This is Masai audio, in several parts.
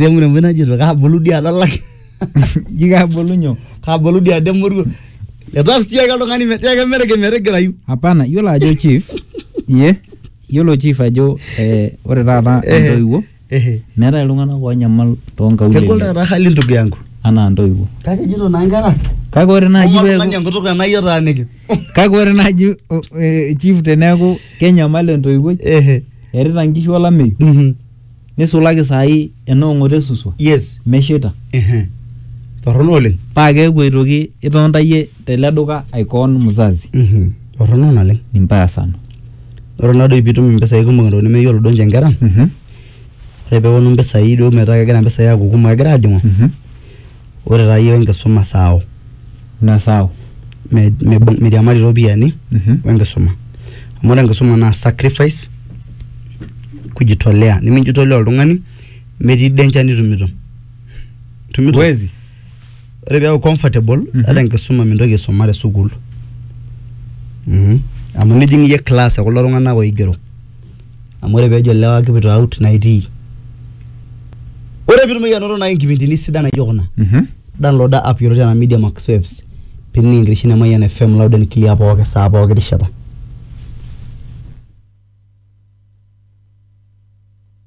remuremoi najito kabulu dii ade olaki ji kabulu nyoo kabulu dii ade moruo etaas sii ake oltung'ani metii ake merege metigirayu hapana yiolo ajo chief ye yiolo chief ajo eh, ore taata Eh. intoiwuo Ehe. meetae iltung'anak oonyamal kegol toonkaulele taata hali ndugu yangu anaa intoiwuo kake ejito naa nkera kake ore naaji Ong'oru peeku oltung'ani enkutuk tenaa iyie otaaniki kake ore naaji o- eh, chief teneeku kenyamal entoiwuoi Ehe. erita nkishu olameyu Mhm. nisulaki saai enoong'oto esuswa yes mesheita Ehe. torrono oleng paa keeku aitoki itoontayie tele duka aikoon mzazi Mhm. torrono naleng ni mbaya sana ore nadoi piitum impisai kumok entoki nemeyiolo duo ninche inkera Mhm, ore peeponu impisai duo metaa kegira impisai aaku kumok egira aajing'u mhm. Ore taa iyiook enkisuma saao. Mme saao. Meiriamari iropiyiani o enkisuma. Amu ore enkisuma naa sacrifice, kujitolea nimijitolea oltung'ani metii danger nitumitum. Huwezi. Ore piaku comfortable ata enkisuma mintoki aisuma te sukuul. Amu nijing iyie class e kulo tung'anak oigero. amu ore pejo lewa kipuito out naitii ore pitumoki anoto nai nkipindini sidan naijo kuna Mhm. downloada app yioloti anaa media max waves pining enkitesheni e mayian fm loud and clear pooki saa pooki rishata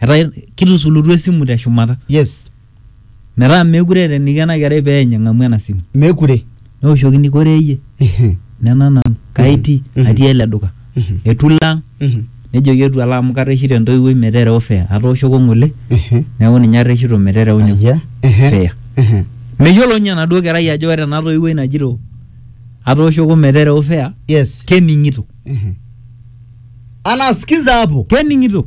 etaa kitusulutua esimu te shumata yes metaa meekure eeta eniko ena kerai pee eny eng'amu ena simu mekure neoshokini kore iyie Ehe, nena nanu kaiti Mhm. atii ele duka Mhm. etu ilo ang mhm, nejoki etu alo amu karreshito entoiwuoi meterewa fare atooshoko ng'ole ehe, neeku ninye arreshito meterewa nyoo ayia, ehe, fare ehe, meyiolo ninye enaduo kerai ajo ore ena toiwuoi najito atooshoko meterewa fare yes kening'ito ehe. anasikiza hapo kening'ito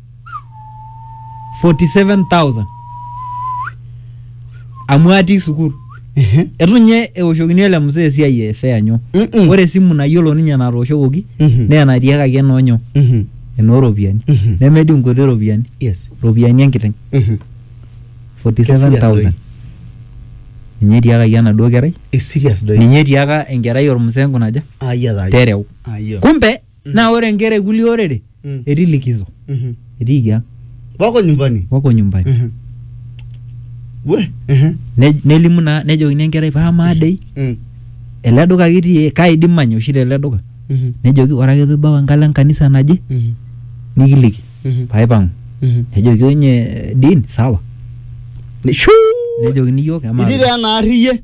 47000 amu atii sukul Ehe. etu ninye eoshokini ele mzee esiai e fea nyo Mm-mm. ore esimu nayiolo ninye natooshokoki Mhm. naa enatiakaki enoonyo Mhm. enooropiyiani Mhm. nemedii nkuti ropiyiani Yes. ropiyiani enkiteng Mhm. 47000 ninye etiakaki enaduo kerai It's serious doi. ninye etiaka enkerai ormzee nkunaja Ayia taa. tereu Ayia. kumbe Naa ore nkera e kulie orere Mm. etii likizo, Mhm. etiiki ang, Wako nyumbani. wako nyumbani. Mhm. We. Mhm. Ne- Nelimu naa nejokini enkerai paa amaa dei Mm. ele duka kitii kaidim manya oshi tele duka. Mhm. Nejoki ore ake piibau enkalo enkanisa naje Mhm. nikiliki Mhm. paaipang'u. Mhm. Nejoki onye Dean sawa. Nishu. Nejokini iyiook emaa Itii taa ena arri iyie.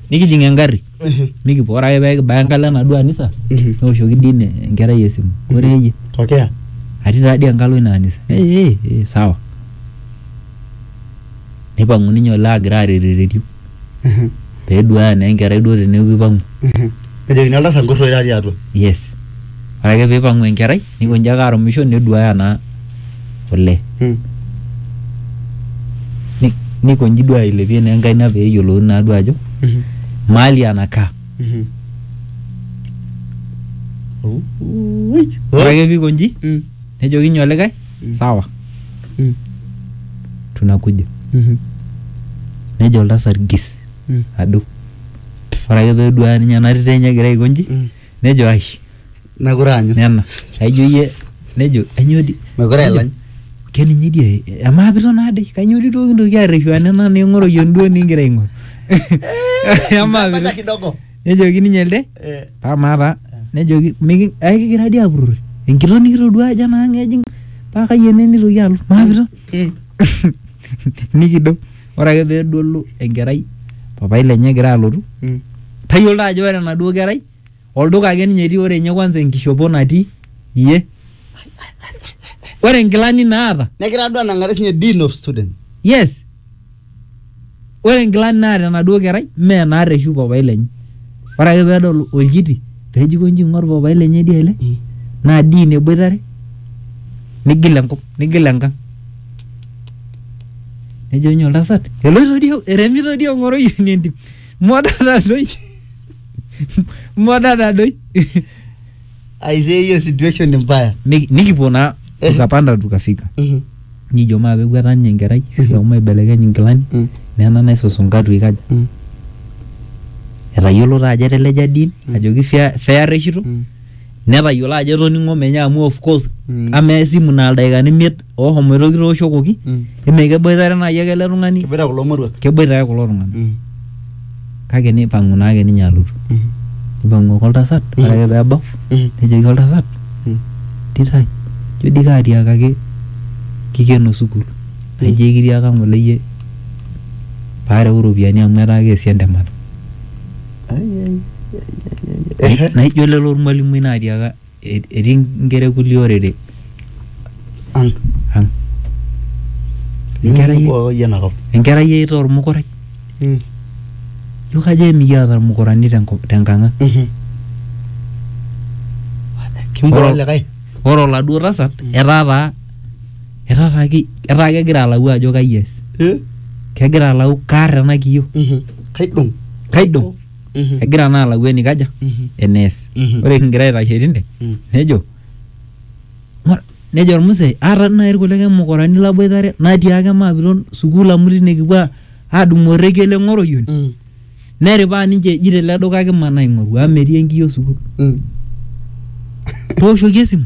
nikijing engarri nikipuo ore ake pee kibaya enkalo enaduo anisa Mhm. neoshoki dii ine enkerai esimu ore iyie tokea atii taa dii enkalo ina anisa "Eh, eh, eh, sawa nipang'u ninye olee agira arerereriu peduaya naa enkerai duo teneeku ipang'u nejokini oltasat nkurroi tatii atua yes ore ake piipang'u enkerai nikonji ake arumisho neduaya naa kule Mm. Ni- nikonji duo ailepie naa enkaina pee eyiolouni naa duo ajo Mhm. mahali anakaa Mhm. Oh, wait. ore ake pikonji Mm. nejoki nyoo likae Mm. sawa Mm. tunakuja Mhm. nejo oltasat gis Mm. ado ore ake peduaya ninye ena tito enye egira aikonji Mm. nejo ai mekure aanyu nena aijo iyie nejo ainyoo di mekure nejo, elany keninye di ai- amaa piton aade kainyoo di duo kintoki arreshu aa nena ning'oru yie duo ningira aing'oru amaa Maja piton kidogo nejoki ninye elde Eh, amaa taa nejoki miki ai kigira di apurrori enkitok nikitoduaa ajo enaang ejing paa kai ene nitoki alo maa piton nikido ore ake pedolu enkerai papai lenye egira alotu Mm. tayiolo taa ajo ore enaduo kerai olduka ake ninye etii ore ninye kwanza enkishopo natii iyie ore nkilani naata Negira duo anang'are sinye dean of student. yes ore nkilani naata enaduo kerai mee naata oshi papai lenye ore ake pedol olchiti peji konji ing'or papai lenye dia ele naa dii ine eboitare nigil enkop nigil enkang nejo inye oltasat eloito dii eremito dii ong'oroyiani entim moda tadoi moda tadoi aisee hiyo situation ni mbaya Nik- nikipuo naa Eh. tukapanda tukafika Mhm. nijo maa peguata ninye enkerai Mhm. shomo aibelekeny inkilani Mm. nena naisusunka tuikaja Mm. etayiolo taa ajo eteleja din ajo kifia fea reshito Mm. netayiolo ajo etoning'o menye amu of course Mm. amaa esimu naa ildaikani imiet oohomoito kitooshokoki Mm. eme keboitare naaji ake ele tung'ani Kiboita kulo moruak. keboita ake kulo tung'anak Mm. kake neipang'u naake ninye alotu Mm. neipang'u ake oltasat Mm. ore ake peebau Mm. nejoki oltasat Mm. titai ijo dii kaatiakaki kikeno sukuul naijo ekitiaka ng'ole iyie paareu iropiyiani amu etaa keesi entemata Ai, ai, ai, ai, ai, ai. naijo lelo ormwalimui naatiaka etii nkera kulie orere ang ang enkerai Enkerai enakop. enkerai eita ormukurai Mm. ijo kajo emikiata irmukurani tenkop- tenkang ang Mhm. Kimbora Oro- likae. ore oladuo tasat etaa taa etaa taa ki- etaa kegira alau ajo kai ees Eh? kegira alau kaar ena kiyio Mhm. Kaidong. kaidong Mhm. egira naa alau enikaja Mhm. enees Mhm. ore kingira aitashe tinde Mm. nejo "Ng'or," nejo ormusee aata nai irkulikae mukurani laboitare natiaaka maapiton sukuul amu tine kipuo a- adumu orrekie le ng'oroyioni Mm. neripaa ninche eji tele duka kimanaa aing'oru amu metii enkiyio sukuul Mm. tooshoki esimu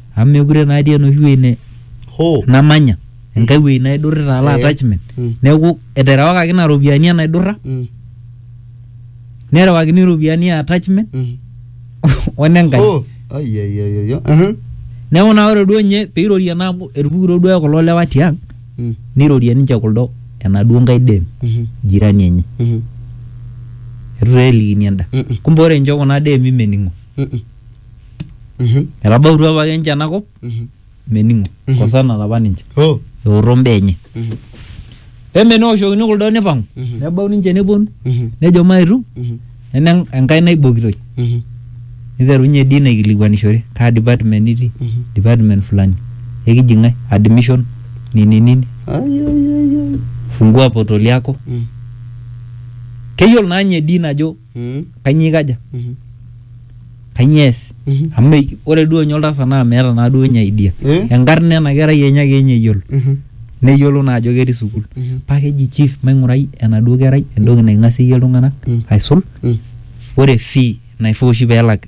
amu mekure naa atii enoshi wueji ne Hoo. namanya enkae wueji naidurrita ala Eh. attachment Mm. neeku eterewakaki ina ropiyiani enaidurra Mm. nerewakini iropiyiani e attachment Mm. onenkaji Hoo. Ai, ai, ai, ai, ai. Aha. neeku naa ore duo nye peirorie naa amu etupukutuo duo kulo lewa tiang Mm. neirorie ninche kuldo enaduo nkae dem Mhm. jirani enye Mhm. etu taa elikini enda Mm-mm. kumbe ore ninche kuna demi mening'o Mm-mm. Mhm. etabautua apake ninche enakop Mhm. mening'o Mhm. kosanate apa ninche Oh. eoto mbaa enye Mhm. peme neoshokini kuldo nipang'u Mhm. nebau ninche neponu Mhm. nejo maetu Mhm. neme en- enkai naibokitoi Mhm. niterunye dii naikilikuanishore kaa department itii Mhm. department fulani ekiji ng'ae admission nini nini Ai, ai, ai, ai. fungua portal yako Mhm. keyiolo naa ninye dii najo Mm, kainyoo ikaja mhm. kainyoo ees Mhm. amu me- ore duo ninye oltasat naa meeta naa duo ninye idea Eh? enkarna ena kerai enye ake ninye eyiolo Mhm, neyiolo naa ajo ketii sukuul mhm, paa keji chief maing'urai enaduo kerai entoki naing'asieyie iltung'anak Mm. aisul mm. ore fee naifaa oshi peelak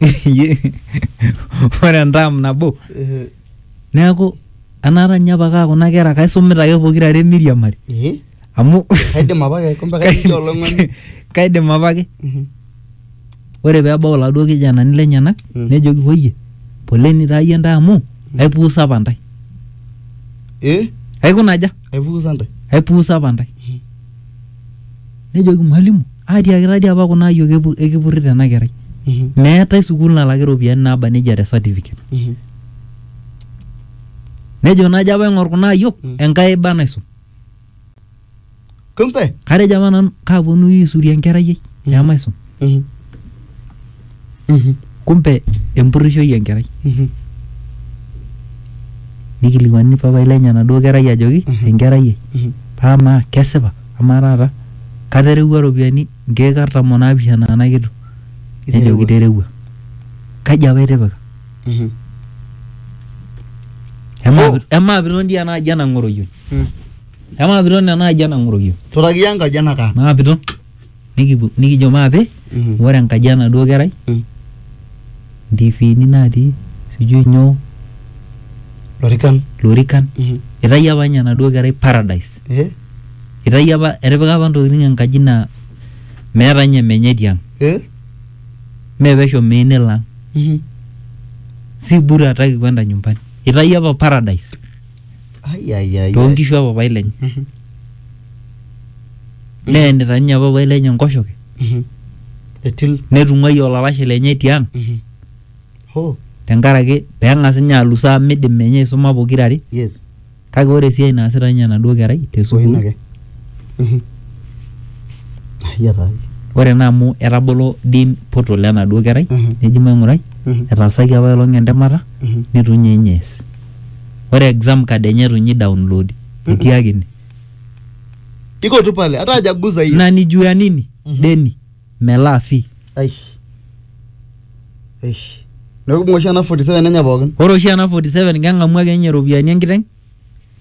Iyie, ore entaam nabo Eh, neeku enaata ninye apake aa kuna kera kaisumita ake pokirare emiriamari eh, amu kaidim apa ake kumbe kaidim olong'oni kaidim apake Mhm. ore peebau iladuo kijanani lenyenak Mm. nejoki woyie poleni taa iyie ntae amu aipuusa apa ntae eh aikuna aja aipuusa ntae aipuusa apa ntae nejoki mwalimu atiaki tadi apa kuna ayiok epu- ekipurrita ena kerai Mhm. meetae sukuul nalaki iropiyiani naaba nejia te certificate Mhm. nejo najo apa aing'or kuna ayiok Mm. enkai iba naisum Kumbe. katejo apa nanu kaaponu aisurie enkerai ai Mhm. nemaisum Mhm. Mhm. kumbe empurrishoi enkerai Mhm. nikilikuani papai lenye enaduo kerai ajoki Mhm. enkerai ai Mhm. paa maa kesipa amaa taata katerewua iropiyiani nkeek artam onaapishana ena kitu nejo Iterewua. kiterewua kaji apa itipika Mhm. Emaa- Oh. emaa piton dii enaaji enang'oroyio Mm. emaa piton enaaji enang'oroyio Turakiya enkaji enakaa. naa piton nikipu- nikijo maape Mhm. ore enkaji enaduo kerai Mm. ntifiini natii sijui nyoo Lorikan. lorikan Mhm. itayio apa ninye enaduo kerai paradise Eh? itayio apa etipika apa ntokitin enkaji naa meeta ninye menye tiang Eh? mee pesho mei nelo ang Mhm. si bure hataki kwenda nyumbani itayio apa paradise Ai, ai, ai, too ai. nkishu e papai lenye Mhm, neenita ninye papai lenye enkoshoke mhm. Etil. netung'uayie olalashe lenye tiang Mhm. Hoo, tenkaraki peng'as ninye alus amu midim menye aisuma pokira are yes. kake ore esiai naasita ninye enaduo kerai te Ina sukuul ake. Mhm. Ai, ai, ai. ore naa amu etabolo dean portal enaduo kerai Mhm. neji maing'urai Mhm. etaasaki apailong entemata Mhm. nitu ninye ninye ees ore exam card enye itu nyi download etii ake ine iko tu pale hata hajaguza hiyo na ni juu ya nini Mhm. deni melaa fee aish aish neeku ibung'a oshi ena 47 enye pookin ore oshi ena 47 keng'amu ake ninye iropiyiani enkiteng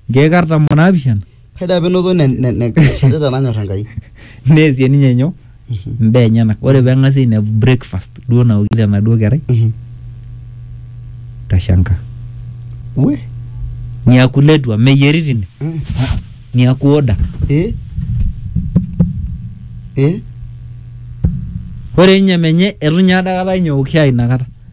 nkeek artam onaapishana Ore taa penoto ne- ne- ne- neshetita nanyor Enkai. neesie ninye nyoo mbaa enyenak ore peng'asi ainepu breakfast duo naokito enaduo kerai Mhm. tashanka We. niaku letua meyieri tine Mm. niaku order Eh? Eh? ore ninye menye etu ninye adakata ninye eok shai inakata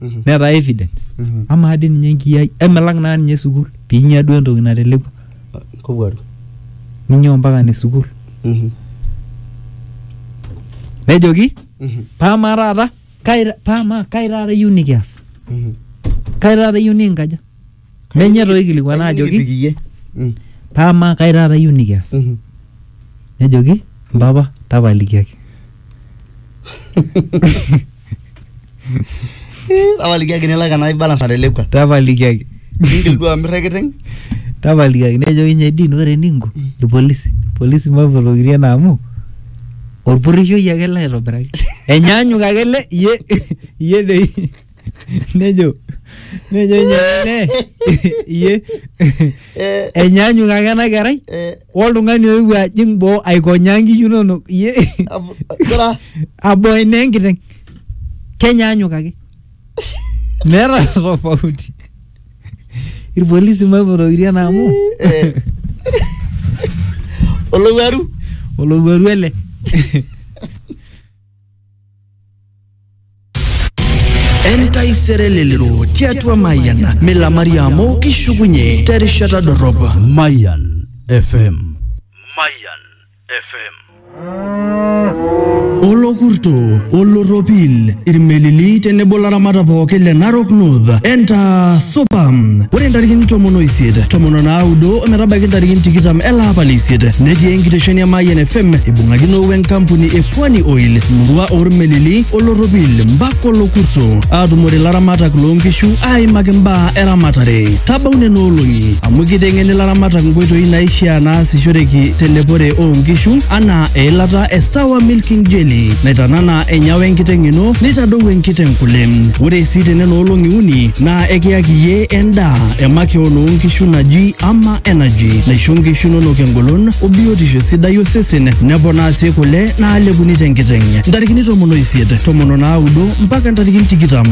Mhm. netaa evidence Mhm. amaa dii ninye enkiyai emelak naa ninye sukuul piinya duo entoki natelekua Kowuaru. ninyoo mpaka ne sukuul Mhm. nejoki Mhm. paamaa taata kai paamaa kai taata iyieu nikias Mhm. kai taata iyieu nikinkaja Menye toi aikilikuana Kayieu ajoki nikipik iyie. Mm, paa amaa kai taata iyieu nikias? mhm. Nejoki mpapa tapalikiaki. Eh, tapalikiaki nilak ena balance natelekua Tapalikiaki. ningil duo amir ekiteng tapalikiaki nejoki nye din ore eninko irpolisi irpolisi mapolokirie naa amu orpurrishoi ake ele aitobiraki enyaanyuk ake ele iye iye dei nejo nejo ninye ele iye Eh, enyaanyuk ake ena kerai eh, oltung'ani oewuo ajing boo aikonyaa nkishu inonok iye ab- kira aboe naa enkiteng kenyaanyuk ake meeta tofauti irpolisi maipotokiti ena amu Eh. olowuaru olowuaru ele entaisere lelero tiatua mayian milamari amu kishukunye terishata dorrop Mayan FM. Mayan FM. olokurto olorropil irmelili tenebo laramata pooki le narok north enta supa ore ntarikini tomon oisiet tomon onaudo ometabaiki ntarikini tikitam ele apa leisiet netii enkitesheni e mayian fm ibung'akino wenkampuni e Pwani Oil, Murua Ormelili, Olorropil, Mbak Olokurto, aatumore laramatak loo nkishu aaimaki mbaa eramatare. Tabau nena olong'i amu kiteng'eni laramatak nkoitoi naishaa naasishoreki telepore oo nkishu anaa eilata e Sawa Milking Jelly naitanana enyawa enkiteng ino neitadou enkiteng kule. Ore sii te nena olong'i uni naa ekiyaki iyie endaa e makeon oo nkishu naji Ama energy naisho nkishu inonok engolon o biotisho sidai osesen neponaa sii kule naalepuni tenkiteng' ntarikini tomon oisiet tomon onaudo mpaka ntarikini tikitam